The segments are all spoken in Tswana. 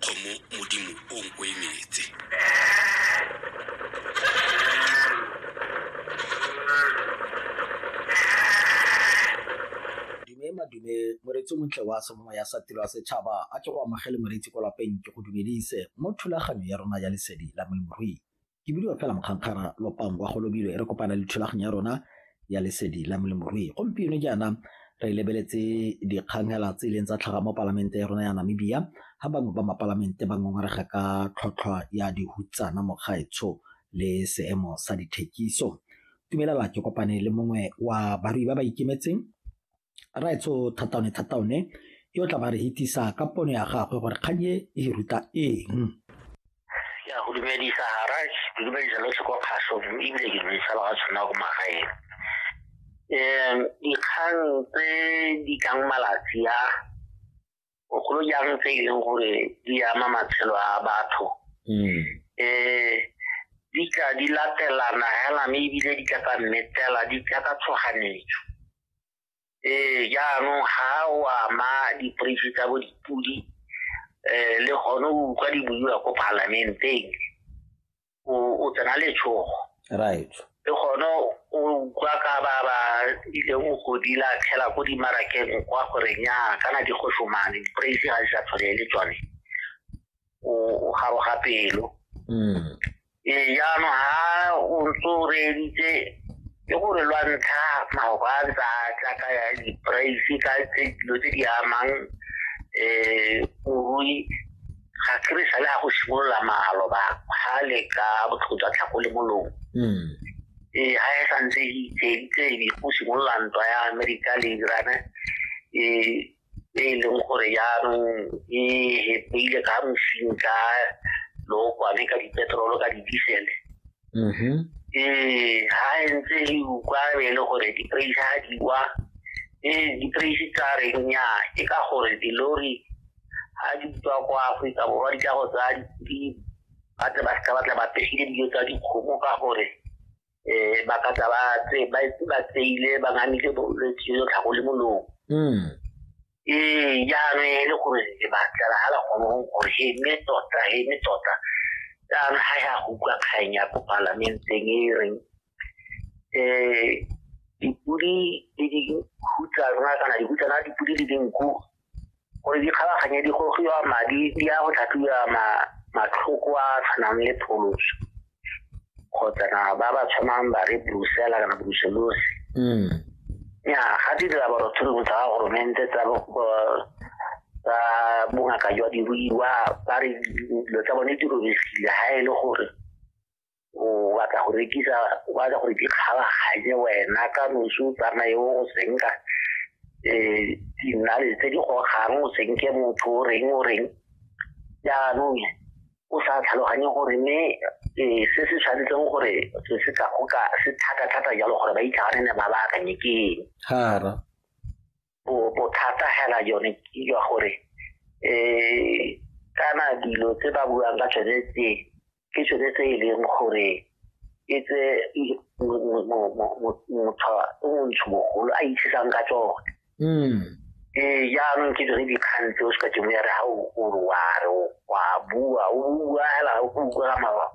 kgomo modimo o o emetse dume madume moretsi o montle wa semomo ya sa tiro ya setšhaba a ke go amogele moretsi ko lapeng ke go dumedise mo thulaganyo ya rona ya lesedi la molemirui Ke bidiwa fela Mokgankgara Lopang kwa Golobilo e re kopana le thulaganyo ya rona ya lesedi la molemorui. Gompieno jaana re lebeletse dikgang hela tse ileng tsa tlhaga mo palamente ya rona ya Namibia ha bangwe ba mapalamente ba ngongorega ka tlhotlhwa ya dihutsana mokgaetsho le seemo sa dithekiso. Tumelela ke kopane le mongwe wa barui ba ba ikemetseng raetsho thataone thataone yo tla ba re hitisa ka pono ya gagwe gore kgang e e ruta eng ya go dumedisa garaj ke dumedisa lotlhe kwa kgaso mme ebile ke dumedisa ba ga tshwana ko magaeng um dikgang tse di tlang malatsi a bogolo jang tse e leng gore di ama matshelo a batho um di tla di latelana hela mme ebile di tla ka mmetela di tla ka tshoganetso ee jaanong ga o ama diporeisi tsa bo dipodi um le gone o utlwa di buiwa ko palamenteng o tsena letshogo right le gone o utlwa ka ba ba ileng o godila tlhela ko dimarakeng kwa gore nya kana di go somane di-praise ga di sa tshwane le tsone o garoga pelo mm. ee jaanong ga o ntse o reeditse ke gore lwa ntlha maoba a ntse a tla ka ya di-praise ka dilo tse di amang um morui ga ke re sale ga go simolola malo ba ga le ka botlhoko jwa tlhako le molomo hmm. ee ga e santse e itseitse ebe go simolola ntwa ya amerika le irane ee e e leng gore jaanong e hepeile ka mosing ka lookwane ka dipetrolo ka didisele mm-hmm. ee ga e ntse e ukwa be e le gore di-praise ga di wa ee di-praise tsa reng nya ke ka gore dilori ga di tswa kwa aforika borwa di tla go tsaya dipidi ba tle ba seka ba tla ba pegile dijo tsa dikgomo ka gore um ba ka tla ba tseile ba ngamile bolwetse jo tlhago le molomo hmm. ee jaanong e le gore le batlela ga la kgonong gore he mme tota he mme tota jaanong ga ya go utlwa kgang ya ko palamenteng e reng um dipodi le dikhutsa rona kana dikhutsana dipodi le dinku gore di kgabaganye di gogiwa madi di ya go tlhatlhiwa matlhoko a tshwanang le pholoso kgotsa na ba ba tshwanang ba re brusela kana bruselosi mm. ya ga di dira borothurumo tsa ga goromente tsa tsa bongaka jwa diruiwa ba re dilo tsa bone di robegile ga e le gore o batla go rekisa o batla gore di kgabaganye wena ka nosi o tsamaye o go senka um dinale tse di gogang o senke motho o reng o reng jaanong o sa tlhaloganye gore mme um se se tshwanetseng gore se se ka goka se thata-thata jalo gore ba itlhaganene ba ba akanye ke eng bothata hela yone ke jwa gore um kana dilo tse ba buang ka tsone tse ke tsone tse e leng gore e tse motho o montsho mogolo a itshisang ka tsone hmm. ee jaanong ke dire dikgang tse o se ka temo ya re ga o re wa re wa bua o bua fela o bua ka mawa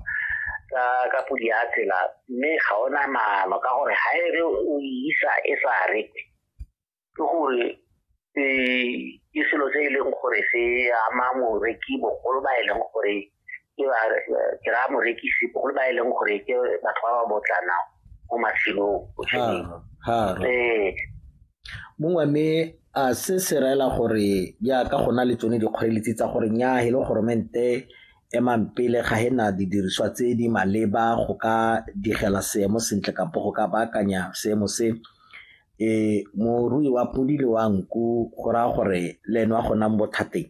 ka ka podi ya tsela mme ga ona maano ka gore ga e re o isa e sa re ke gore eh, ke selo se e leng gore se ama moreki bogolo ba e leng gore ke ba ke raya morekisi bogolo ba e leng gore ke batho ba ba botlana mo matshelong botshelong Haro, haro. ee mongwe mme a se se raela gore jaaka go na le tsone dikgoreletsi tsa gore nya e le goromente emang pele ga e na didiriswa tse di maleba go ka digela seemo sentle kampo go ka baakanya seemo se Morui wa podi le wa nku go raya gore le ene o a go nna mo bothateng.